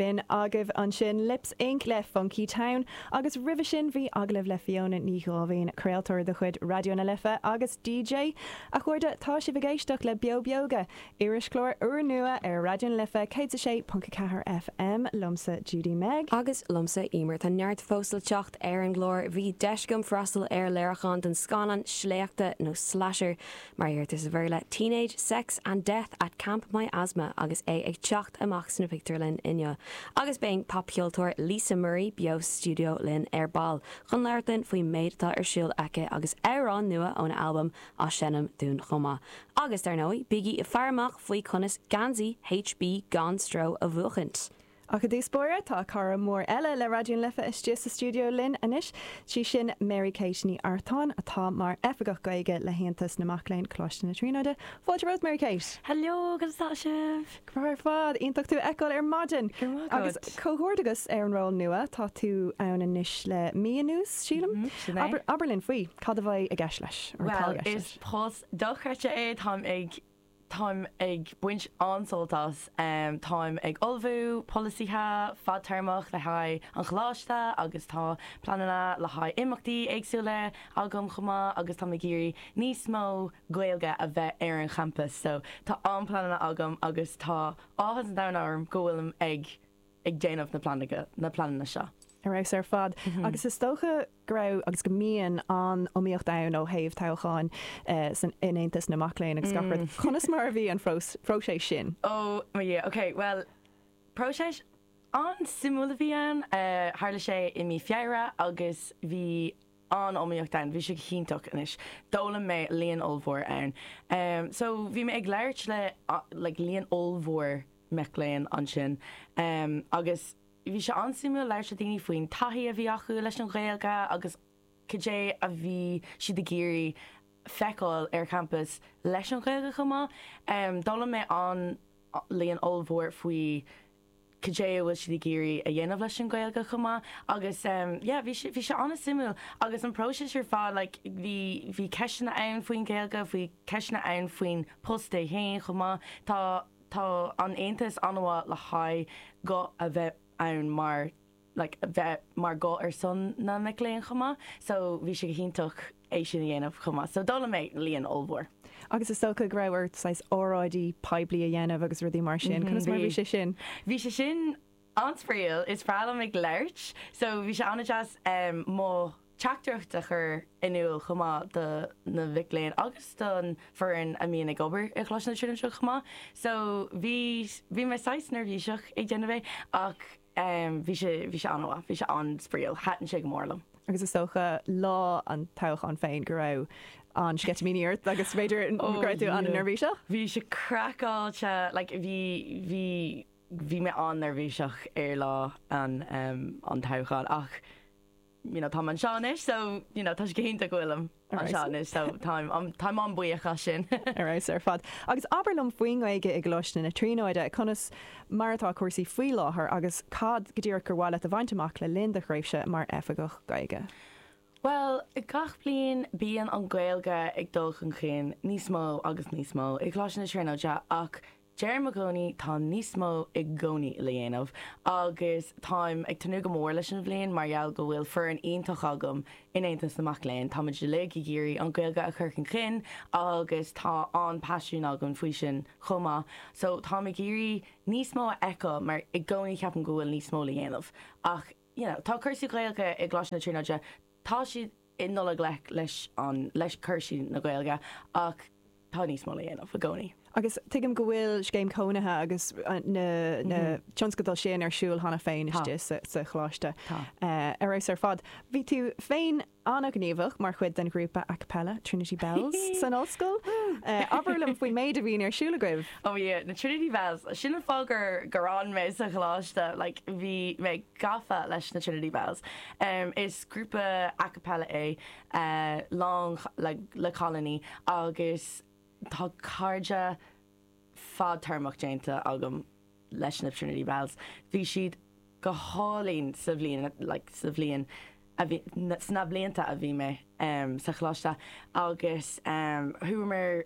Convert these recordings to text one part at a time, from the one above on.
B'in agaibh ansin Lips Inc. le Funkytown, agus roimhe sin bhí agallamh le Fiona Ní Dháimhín, craoltóir de chuid Raidió na Life agus DJ. A chairde, tá sibh ag éisteacht le Beo Beoga, irischlár úrnua ar Raidió na Life 106.4 FM, liomsa Judy Meg. Agus liomsa Eimear. Tá neart fós le teacht ar an gclár, bhí deis agam freastal ar léiriúchán den scannán sléachta nó slasher Mar a dheirtear sa Bhéarla, Teenage sex and death at Camp Miasma agus é ag teacht amach sna pictiúrlanna inniu. Agus beidh an popcheoltóir Lisa Murray beo sa stiúideo linn ar ball chun labhairt linn faoin méid atá ar siúl aici agus amhrán nua óna halbam a sheinm dúinn chomh maith. Agus, dar ndóigh, bígí ag faire amach faoi conas geansaí HB Gan Stró a bhuachaint! Ach i dtús báire, tá cara mór eile le Raidió na Life istigh sa stiúideo linn anois, 'sí sin Mary Kate Ní Artáin, atá mar Oifigeach Gaeilge le hAontas na Mac Léinn, Coláiste na Tríonóide. Fáilte romhat, Mary Kate! Heileo, cad é mar atá sibh? Ar fheabhas ar fad! Iontach tú a fheiceáil ar maidin! Go raibh maith agat! Agus comhghairdeas agus ar an ról nua, tá tú ann anois le mí anuas, sílim? Sin é. Abair linn faoi, cad a bheidh i gceist leis? Bhuel, is post dochreidte é, táim ag. Táim ag baint an-sult as. Táim ag ullmhú polasaithe fadtéarmach le haghaidh an Choláiste agus tá pleananna le haghaidh imeachtaí éagsúla agam chomh maith agus táim ag iarraidh níos mó Gaeilge a bheith ar an gcampas so tá an-pleananna agam agus tá áthas an domhain orm go bhfuilim ag ag déanamh na bpleananna seo. ar fheabhas ar fad agus is dócha go raibh agus go mbíonn an-iomaíocht ann ó thaobh toghcháin in Aontas na Mac Léinn agus gach rud. Conas mar a bhí an próiseas sin? Ó, mo Dhia, ok, bhuel, próiseas an-suimiúil a bhí ann. Tharla sé i mí Feabhra agus bhí an-iomaíocht ann, bhí sé go hiontach anois. D'fhoghlaim mé líon ollmhór ann. So, bhí mé ag labhairt le like líon ollmhór. mic léinn ansin agus bhí sé an-suimiúil labhairt le daoine faoin taithí a bhí acu leis an Ghaeilge agus cad é a bhí siad ag iarraidh feiceáil ar champas leis an Ghaeilge chomh maith. D'fhoghlaim mé an-líon ollmhór faoi cad é a bhfuil siad ag iarraidh a dhéanamh leis an Ghaeilge chomh maith agus yeah bhí sé bhí sé an-suimiúil agus an próiseas ar fad like bhí bhí ceisteanna ann faoin Ghaeilge, bhí ceisteanna ann faoin post é féin chomh maith. Tá. Tá an tAontas an-mhaith le haghaidh guth a bheith ann mar like bheith mar guth ar son na mic léinn chomh maith so bhí sé go hiontach é sin a dhéanamh chomh maith so d'fhoghlaim mé líon ollmhór. Agus is dócha go raibh ort saghas óráidí poiblí a dhéanamh agus rudaí mar sin, conas mar a bhí sé sin? Bhí sé sin. An-spraíúil is breá liom ag labhairt so bhí sé an-deas mo theachtaireacht a chur in iúl chomh maith do na mhic léinn agus don foireann a mbíonn ag obair i gColáiste na Tríonóide seo chomh maith so bhí bhí mé saghas neirbhíseach ag déanamh é ach bhí sé bhí sé an-mhaith, bhí sé an-spraíúil, thaitin sé go mór liom. Agus is dócha lá an toghcháin féin go raibh an-sceitimíní ort agus b'fhéidir go raibh tú an-neirbhíseach? Bhí sé craiceáilte, like bhí, bhí. Bhí mé an-neirbhíseach ar lá an an toghcháin ach you know táim anseo anois so you know tá sé go hiontach go bhfuilim anseo anois so táim um, táim an-buíoch as sin. Ar fheabhas ar fad. Agus abair liom faoin nGaeilge i gColáiste na Tríonóide, conas mar atá cúrsaí faoi láthair agus cad go díreach gur mhaith leat a bhaint amach le linn do thréimhse mar Oifigeach Gaeilge? Bhuel, gach bliain bíonn an Ghaeilge ag dul chun cinn níos mó agus níos mó i gColáiste na Tríonóide ach Deirim i gcónaí, tá níos mó i gcónaí le dhéanamh agus táim ag tnúth go mór leis an bhliain mar gheall go bhfuil foireann iontach agam in Aontas na Mac Léinn. Táimid uilig ag iarraidh an Ghaeilge a chur chun cinn agus tá an-paisiún againn faoi sin chomh maith so táim ag iarraidh níos mó a fheiceáil mar i gcónaí ceapaim go bhfuil níos mó le dhéanamh ach you know tá cúrsaí Gaeilge i gColáiste na Tríonóide, tá siad. ag dul i ngleic leis an leis cúrsaí na Gaeilge ach tá níos mó le dhéanamh i gcónaí. Agus tuigim go bhfuil scéim cónaithe agus na na tionscadail sin ar siúl cheana féin istigh sa sa Choláiste ar fheabhas ar fad. Bhí tú féin an-ghníomhach mar chuid den ghrúpa a cappella Trinity Belles san Ollscoil. Abair liom faoin méid a bhíonn ar siúl agaibh. Ó yeah, na Trinity Belles, sin an fáth gur gur fhan mé sa Choláiste like bhí mé gafa leis na Trinity Belles. Is Grúpa a cappella é, lán le cailíní agus tá cairde fadtéarmach déanta agam leis na Trinity Belles. Bhí siad go hálainn sa bhliain, like sa bhliain a bhí, sna blianta a bhí mé sa choláiste agus chuamar,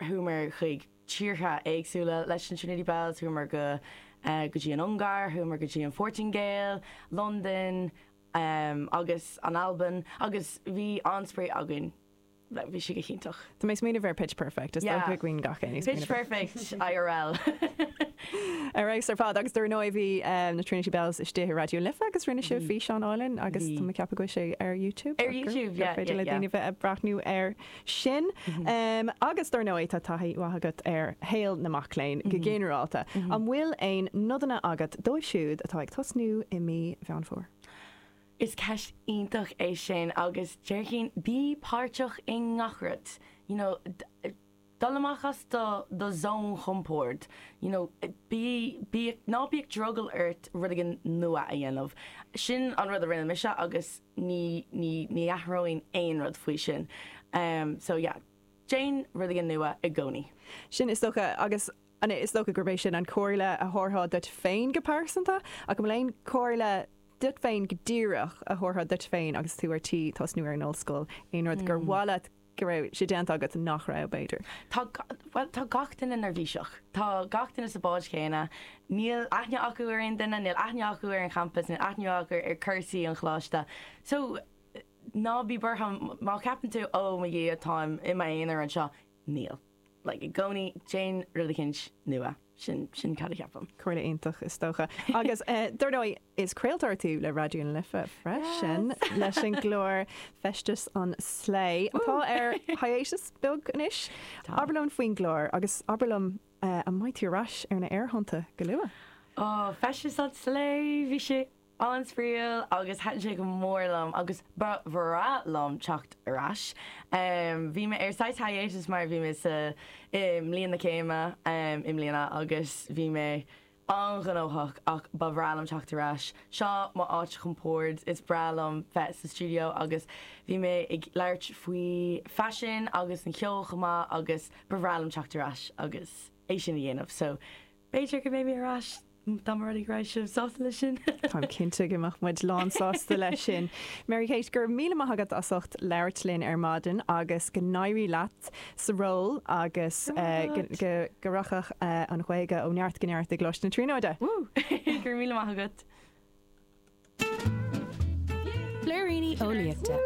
chuamar chuig tíortha éagsúla leis na Trinity Belles, chuamar go dtí an Ungáir, chuamar go dtí an Phortaingéil, Londain. agus an Albain, agus bhí an-spraoi againn. Bhuel, bhí sé go hiontach. Tá mé ag smaoineamh ar Pitch Perfect, is dócha againn gach aon ní. Pitch Perfect IRL! Ar fheabhas ar fad, agus dar ndóigh bhí na Trinity Belles istigh i Raidió na Life agus rinne sibh físeán álainn agus tá mé ag ceapadh go bhfuil sé ar YouTube. Ar YouTube, yeah. Féidir le daoine bheith ag breathnú air. sin. Agus, dár ndóigh, tá taithí mhaith agat ar shaol na mac léinn go ginearálta. An bhfuil aon nodanna agat dóibh siúd atá ag tosnú i mí Mheán Fómhair? Is ceist iontach é sin agus déarfainn bí páirteach i ngach rud. You know, dul amach as do do zone chompoird. You know, bí, bí, ná bíodh drogall ort rud éigin nua a dhéanamh. Sin an rud a rinne mise agus ní, ní, ní athróinn aon rud faoi sin. So yeah, déan rudaí nua i gcónaí. Sin is dócha. Agus an é, is dócha gurb é sin an comhairle a thabharfá duit féin go pearsanta, ach an bhfuil aon chomhairle duit féin go díreach a thabharfá duit féin agus tú ar tí tosnú ar an ollscoil, aon rud gur mhaith leat go raibh sé déanta agat, nach raibh, b'fhéidir? Tá, bhuel, tá gach duine neirbhíseach. Tá gach duine sa bhád chéanna. Níl aithne acu ar aon duine, níl aithne acu ar an gcampas, níl aithne acu ar chúrsaí an choláiste. So, ná bí buartha má cheapann tú, 'Ó, mo Dhia, táim i m'aonar anseo', níl. like i gcónaí, déan rud eicínt nua. Sin, sin cad a cheapaim. Comhairle iontach, is dócha. Agus dar ndóigh, is craoltóir tú le Raidió na Life freisin, leis an gclár Feisteas an Slay, atá ar hiatus beag anois. Tá. Abair liom faoin gclár, agus abair liom an mbeidh tú ar ais ar na aerthonnta go luath? Ó, Feisteas an Slay, bhí sé. an-spraíúil agus thaitin sé go mór liom agus ba bhreá liom teacht ar ais. Bhí mé ar saghas hiatus mar bhí mé sa i mbliain na céime i mbliana agus bhí mé an-ghnóthach ach ba bhreá liom teacht ar ais. Seo mo áit chompoird, is breá liom bheith sa stiúideo agus bhí mé ag labhairt faoi faisean agus an ceol chomh maith agus ba bhreá liom teacht ar ais agus é sin a dhéanamh so, B'fhéidir go mbeidh mé ar ais, dá mba rud é go raibh sibh sásta leis sin! Táim cinnte go mbeadh muid lán sásta leis sin. Mary Kate, go raibh míle maith agat as ucht labhairt linn ar maidin agus go n-éirí leat sa ról agus go rachadh an Ghaeilge ó neart go neart i gColáiste na Tríonóide! Woo! Go raibh míle maith agat! Blúiríní eolaíochta.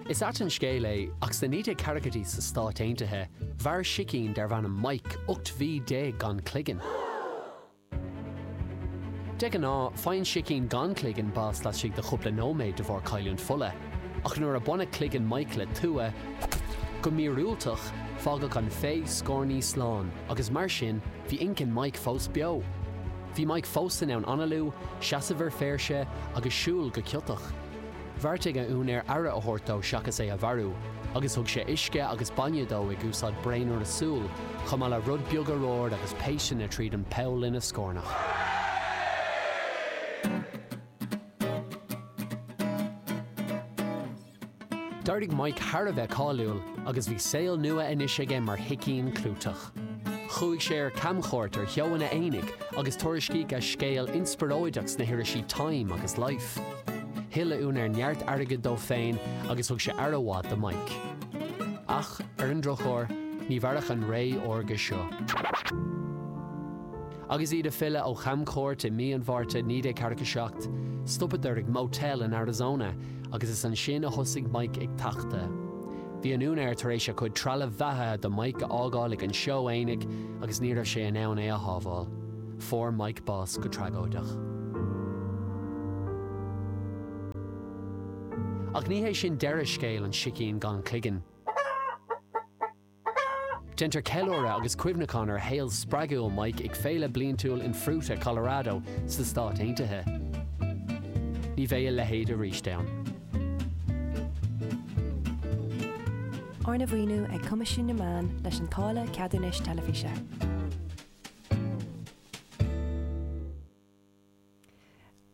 Is ait an scéal é, ach sna 1940idí sna Stáit Aontaithe, mhair sicín darbh ainm Mike 18 mhí gan cloigeann. De ghnáth, faigheann sicín gan cloigeann bás laistigh de chúpla nóiméad de bharr cailliúint fola, ach nuair a baineadh cloigeann Mike le tua, go míorúilteach, fágadh an féith scornaí slán, agus mar sin, bhí inchinn Mike fós beo! Bhí Mike fós in ann analú, seasamh ar phéirse agus siúl go ciotach. Bheartaigh a úinéir aire a thabhairt dó seachas é a mharú, agus thug sé uisce agus bainne dó ag úsáid braonaire súl, chomh maith le rud beag arbhair agus péisteanna tríd an bpoll ina scornach. D'éirigh Mike thar a bheith cáiliúil agus bhí saol nua anois aige mar shicín clúiteach. Chuaigh sé ar camchuairt ar sheóanna aonaigh agus tuairiscíodh a scéal inspioróideach sna hirisí Time agus Life. Thuill a úinéir neart airgid dó féin agus thug sé aire mhaith do Mike. Ach, ar an drochuair, ní mhairfeadh an ré órga seo. Agus iad ag filleadh ó chamchuairt i mí an Mhárta 1947, stopadar ag motel in Arizona agus is ansin a thosaigh Mike ag tachtadh. Bhí a úinéir tar éis a chuid trealaimh bheathaithe do Mike a fhágáil ag an seó aonaigh agus ní raibh sé in ann é a shábháil. Fuair Mike bás go tragóideach. Ach ní hé sin deireadh scéal an sicín gan chloigeann. Déantar ceiliúradh agus cuimhneachán ar shaol spreagúil Mike ag féile bliantúil in Fruita, Colorado, sna Stáit Aontaithe. Ní bheidh a leithéid arís ann. Arna mhaoiniú ag Coimisiún na Meán leis an táille ceadúnais teilifíse.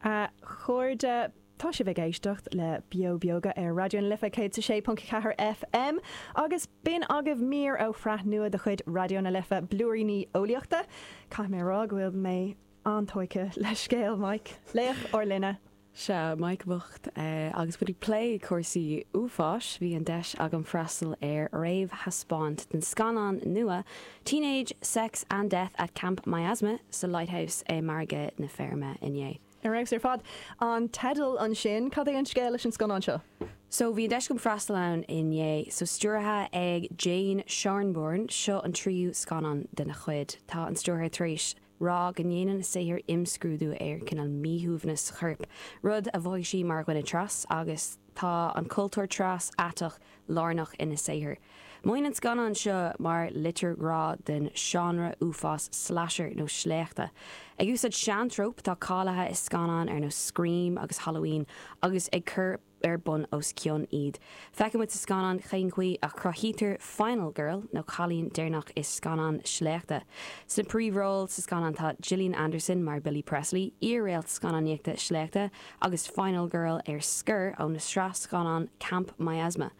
A chairde, tá sibh ag éisteacht le Beo Beoga ar Raidió na Life 106.4 FM agus b'in agaibh mír ó shraith nua de chuid Raidió na Life, Blúiríní Eolaíochta. Caithfidh mé a rá go bhfuil mé an-tógtha le scéal Mike, laoch ár linne. Sea, Mike bocht. Agus muid ag plé cúrsaí uafáis, bhí an deis agam freastal ar réamhthaispeáint den scannán nua Teenage Sex and Death at Camp Miasma sa Lighthouse i Margadh na Feirme inné. Ar fheabhas ar fad an teideal ansin. Cad é an scéal leis an scannán seo? So, bhí an deis agam freastal ann inné. So, stiúrtha ag Jane Schoenbrun, seo an tríú scannán dena cuid. Tá an stiúrthóir tar éis rá go ndéanann a saothair imscrúdú ar cineál míshuaimhneas coirp, rud a mhothaigh sí mar dhuine 'tras', agus tá an cultúr 'tras', aiteach, lárnach ina saothar. Maíonn an scannán seo mar litir ghrá den seánra uafás slasher nó sléachta. Ag úsáid seantróp atá cáiliúil i scannáin ar nós Scream agus Halloween agus á gcur ar bun os cionn iad. Feiceann muid sa scannán cén chaoi a chruthaítear final girl nó cailín deireanach i scannán sléachta. Sna príomhróil sa scannán tá Gillian Anderson mar Billy Presley, iar-réalt scannánaíochta sléachta agus final girl ar scor ó na sraith scannán camp miasma.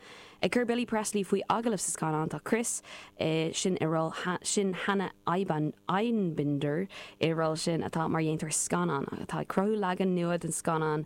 Ag cur Billy Presley faoi agallamh sa scannán tá Kris, sin i ról sin Hannah Einbinder i ról sin atá mar dhéantóir scannán atá ag cruthú leagan nua den scannán,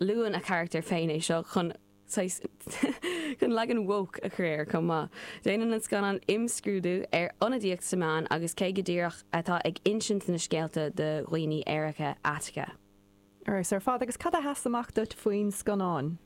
luann a charachtar féin é seo chun, saghas, chun leagan woke a chur air chomh maith. Déanann an scannán imscrúdú ar ionadaíocht sna meáin agus cé go díreach atá ag insint na scéalta do dhaoine aeracha, aiteacha. Ar fheabhas ar fad agus cad a sheas amach duit faoin scannán?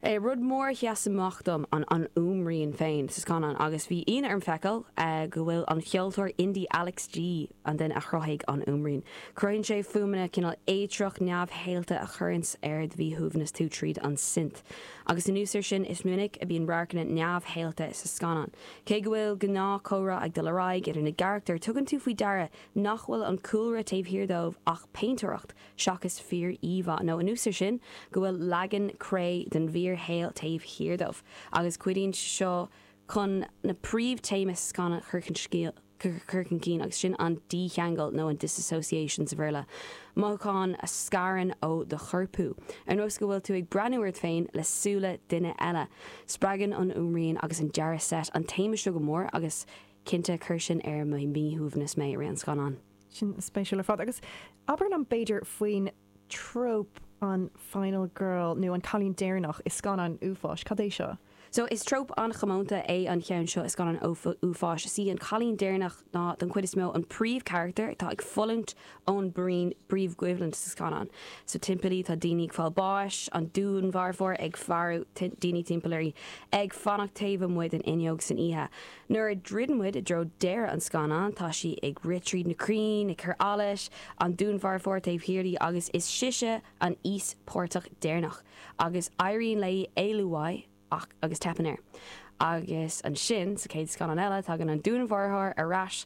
é rud mór a sheas amach dom an an fhuaimrian féin sa scannán agus bhí ionadh orm a fheiceáil go bhfuil an ceoltóir indie Alex G, an duine a chruthaigh an fhuaimrian, cruthaíonn sé fuaimeanna cineál éitreach neamhshaolta a chuireanns ar do mhíshuaimhneas tú tríd an synth agus anuas ar sin is minic a bhíonn radharcanna neamhshaolta sa scannán. Cé go bhfuil gnáth comhrá ag dul ar aghaidh idir na carachtair tugann tú faoi deara nach bhfuil an cúlra taobh thiar dóibh ach péintéireacht seachas fíoríomhá, nó anuas ar sin, go bhfuil leagan cré den bhfíorshaol taobh thiar dóibh, agus cuidíonn seo chun na príomhthéamaí sa scannán a chur chun cinn, agus sin an dícheangal, nó an disassociation sa Bhéarla, mothúchán a scarann ó do chorpú, ar nós go bhfuil tú ag breathnú ort féin le súile duine eile. Spreagann an fhuaimrian agus an dearadh seit an téama seo go mór, agus cinnte, chuir sin ar mo mhíshuaimhneas mé i rith an scannáin. Sin spéisiúil ar fad. Agus abair liom, b'fhéidir, faoin tróp an final girl nó an cailín deireanach i scannáin uafáis. Cad é seo? So, is tróp an-chomónta é an cheann seo i scannáin uafáis. Is í an cailín deireanach ná, don chuid is mó, an príomhcharachtar atá ag fulaingt ón bpríomhchoimhlint sa scannán. So, timpeall í, tá daoine ag fáil báis, an dúnmharfóir ag faire daoine timpeall uirthi, ag fanacht taobh amuigh den fhuinneog san oíche. Nuair a dhruideann muid i dtreo deireadh an scannáin, tá sí ag rith tríd na crainn, ag cur allais, an dúnmharfóir taobh thiar di agus is sise an íospartach deireanach, agus éiríonn léi éalú uaidh ach agus teipeann air. Agus ansin, sa chéad scannán eile, tagann an dúnmharfóir ar ais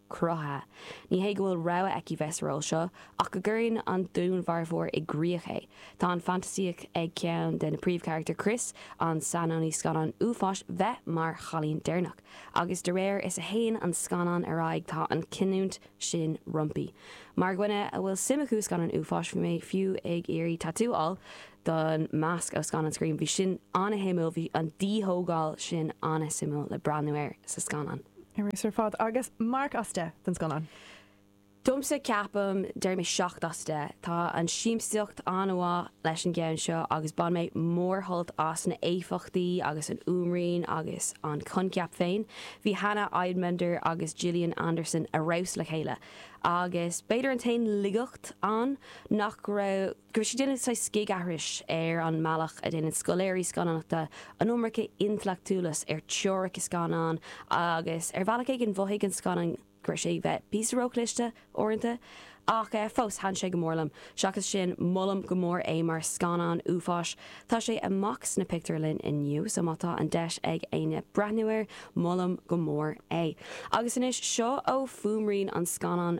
cruthaithe. Ní hé go bhfuil rogha aici bheith sa ról seo, ach go gcuireann an dúnmharfóir i gcrích é. Tá an fantaisíocht ag ceann de na príomhcharachtair, Chris, an saineolaí scannán uafáis, a bheith mar chailín deireanach, agus de réir is a théann an scannán ar aghaidh tá an chinniúint sin roimpi. Mar dhuine a bhfuil suim acu i scannáin uafáis, bhí mé fiú ag iarraidh tatú a fháil, den masc ón scannán Scream. Bhí sin an-shuimiúil, bhí an díthógáil sin an-suimiúil le breathnú air sa scannán. Ar fheabhas ar fad, agus marc as deich don scannán. Domsa, ceapaim, déarfaidh mé seacht as deich. Tá an siamsaíocht an-mhaith leis an gceann seo agus bhain mé mórsholt as na héifeachtaí agus an fhuaimrian agus an coincheap féin. Bhí Hannah Einbinder agus Gillian Anderson ar fheabhas le chéile agus b'fhéidir an t-aon laigeacht ann nach raibh. go raibh sé ag déanamh saghas scigaithris ar an mbealach a dhéanann scoláirí scannánachta an iomarca intleachtúlais ar theoiricí scannán agus ar bhealach éigin mhothaigh an scannán go raibh sé bheith píosa róchliste, uaireanta. Ach fós, thaitin sé go mór liom. Seachas sin, molaim go mór é mar scannán uafáis. Tá sé amach sna pictiúrlainn inniu, so má tá an deis ag éinne breathnú air, molaim go mór é. Agus anois, seo ó fhuaimrian an scannáin.